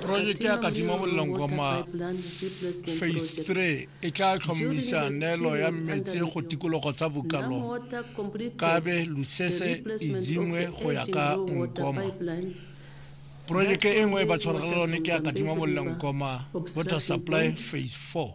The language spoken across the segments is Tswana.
porojeke ya kadimo bolelong goma phase three e tla tlhomamisa neelo ya mmetse go tikologo tsa bokalo kabe lusese izingwe go ya ka nkoma porojeke e nngwe e ba tshwaragela lone ke ya kadimo bolelong goma water supply phase four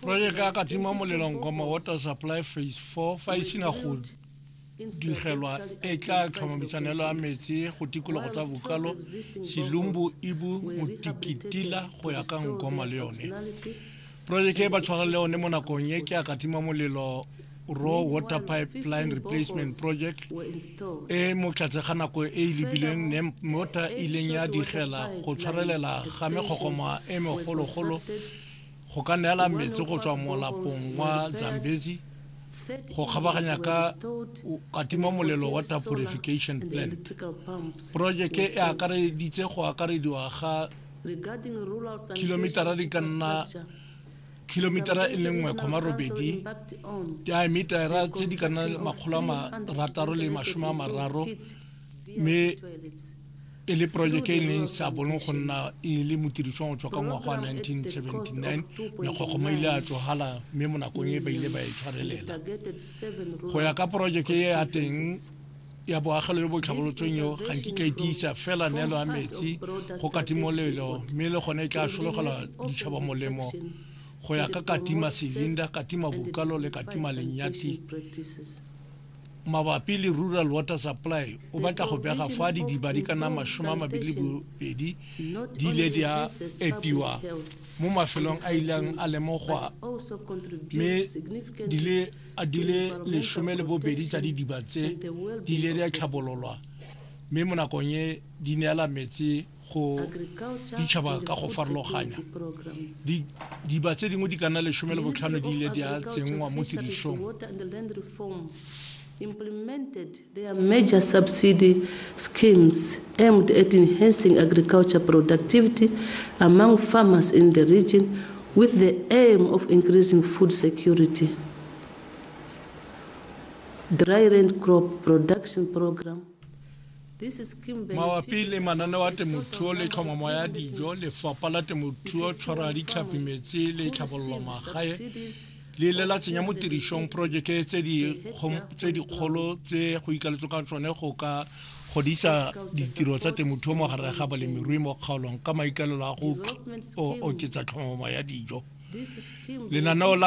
projeke ya katima molelo nkoma water supply phase 4 fa e sena go digelwa e tla tlhomamisanelo ya metsi go tikologo tsa bokalo silumbu ibu motikitila go ya ka nkoma le yone projeke e ba tshwarang le yone mo nakong e ke a katima molelo raw water pipeline replacement project e mo tlatse ga nako e e lebilweng ne mota e ileng ya digela go tshwarelela ga mekgokgoma e megologolo go ka neela metsi go tswa molapong wa zambezi go kgabaganya ka katima molelo wa tapurification plant projeke e akareditse go akarediwa ga kilomitara di ka nna kilomitara e le nngwe kgoma robedi diametara tse di ka nna makgolo a marataro le masome a mararo mme e le projeke e leng sa bolong go nna e le motirišong go tswa ka ngwaga wa 1979 mekgokgoma ile a tsogala mme mo nakong e ba ile ba e tshwarelela go ya ka projeke e ya teng ya boagelo yo bo tlhabolotsweng yo ga nkitla e tiisa fela neelo ya metsi go katimolelo mme le gone e tla sologela ditšhaba molemo go ya ka katima silinda katima bukalo le katima lenyati mabapi le rural water supply o batla go bega fa didiba di ka nna masome a mabedi le bobedi di ile di a epiwa mo mafelong a ileng a lemogwa mme di le a di le lesome le bobedi tsa didiba tse di ile di a tlhabololwa mme mo nakong e di neela metsi go ditšhaba ka go farologanya diba tse dingwe di ka nna lesome le botlhano di ile di a tsenngwa mo tirisong There are major subsidy schemes aimed at enhancing agriculture productivity among farmers in the region with the aim of increasing food security. Dry land crop production program. This is scheme mabapi le mananeo a temothuo le tlhomamo ya dijo lefapha la temothuo tshwara ditlhapi metsi le tlhabololo magae le ile la tsenya mo tirisong porojeke tse dikgolo tse go ikaletswe ka tsone go ka godisa ditiro tsa temothuo mo gare ga balemirui mo kgaolong ka maikalelo a go oketsa tlhomamo ya dijo lenaneo la